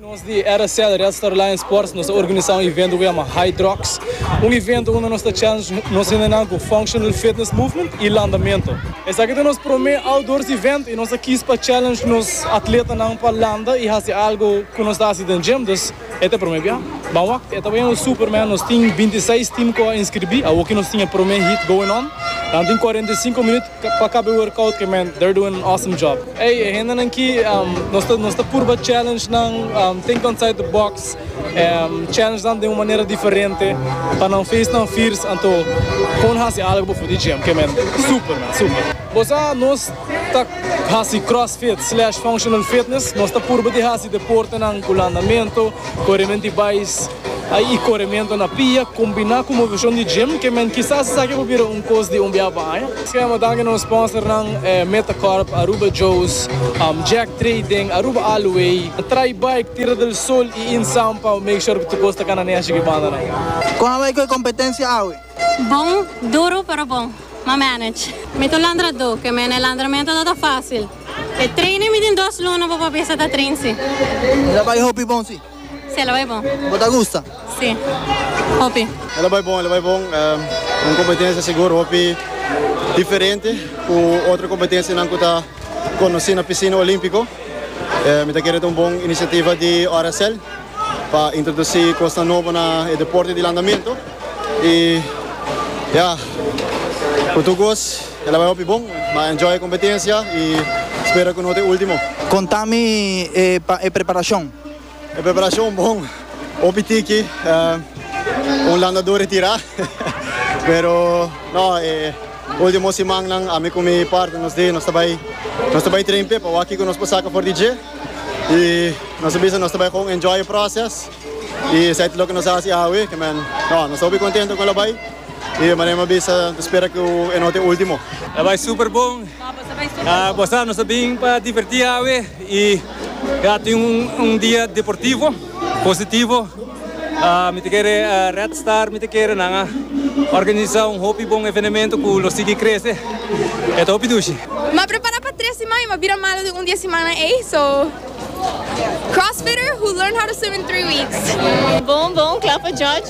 Nos di RSL, Red Star Lions Sports, nos a organisa un evento cu yama High Drugs. Un evento unda nos ta challenge nos hendenan cu Functional Fitness Movement y landamento. Esaki ta nos prome outdoors event y nos a kies pa challenge nos atletanan pa landa y haci algo cu nos ta haci den gym. Dus e ta e prome bia. Ban wak, e ta bay un super man. Nos tin binti seis team cu a inscribi. Awoki nos tin e prome heat going on. Nan tin cuarenta i sinku minut. Pa kabe workout ke men they're doing an awesome job ey e hendenan ki nos ta nos ta purba challenge nan think outside the box challenge nan den un manera diferente pa nan face nan fears anto kon hasi algo before di gym ke men super men super. Bo sa nos ta hasi crossfit slash functional fitness nos ta purba di hasi deportenan ku landamento koremen di bais. Ai i coremento na pia combina cu movesion di gym ke men kisas esaki por bira un cos di un bia pa aña. Schrema danki nos sponsornan Metacorp, Aruba Joe's, Jack Trading, Aruba Alloy, Try Bike, Tierra del Sol y Insam pa make sure cu tur cos ta cana neshi cu e banda nan. Con a bai cu e competencia awe? Bon, duro pero bon. M'a manage. Mi ta un landradó ke men e landramento no ta facil. E train mi tin dos luna pa papia sa ta train si. Mi ta bai hopi bon si. Si, ela bai bon. Bo ta gusta? Si, hopi. Ela bai bon, ela bai bon. Un kompetensia sigur hopi diferente ku otro kompetensianan ku ta konosí na Pisina Olímpiko. Mi ta kere ta un bon inisiativa di RSL pa introdusí kosnan nobo na e deporte di landamentu. I ya, ku tur kos ela bai hopi bon. Mi a enjoy e kompetensia i spera ku no ta e último. Konta mi e preparashon. E preparashon bon, hopi tiki, un landador e tira, pero no, e ultimo simannan ami ku mi partner nos di nos ta bai nos ta bai treinpe pa wak kiko nos por saka for di dje i nos a bisa nos ta bai gewoon enjoy e proces i esei ta loke nos a hasi awe ke men no nos ta hopi kontento ku el a bai i manera mi a bisa mi ta spera ku e no ta e ultimo. A bai super bon, bo sa nos a bin pa diverti awe i. Ya tin un dia deportivo, positivo. Mi ta kere Red Star, mi ta kere nan a organisa un hopi bon evenemento ku lo sigui krese. E ta hopi dushi. Mi a prepara pa tres siman i mi a bira malo den un di e simannan ei. So, crossfitter who learned how to swim in three weeks. Bon bon, kla pa judge.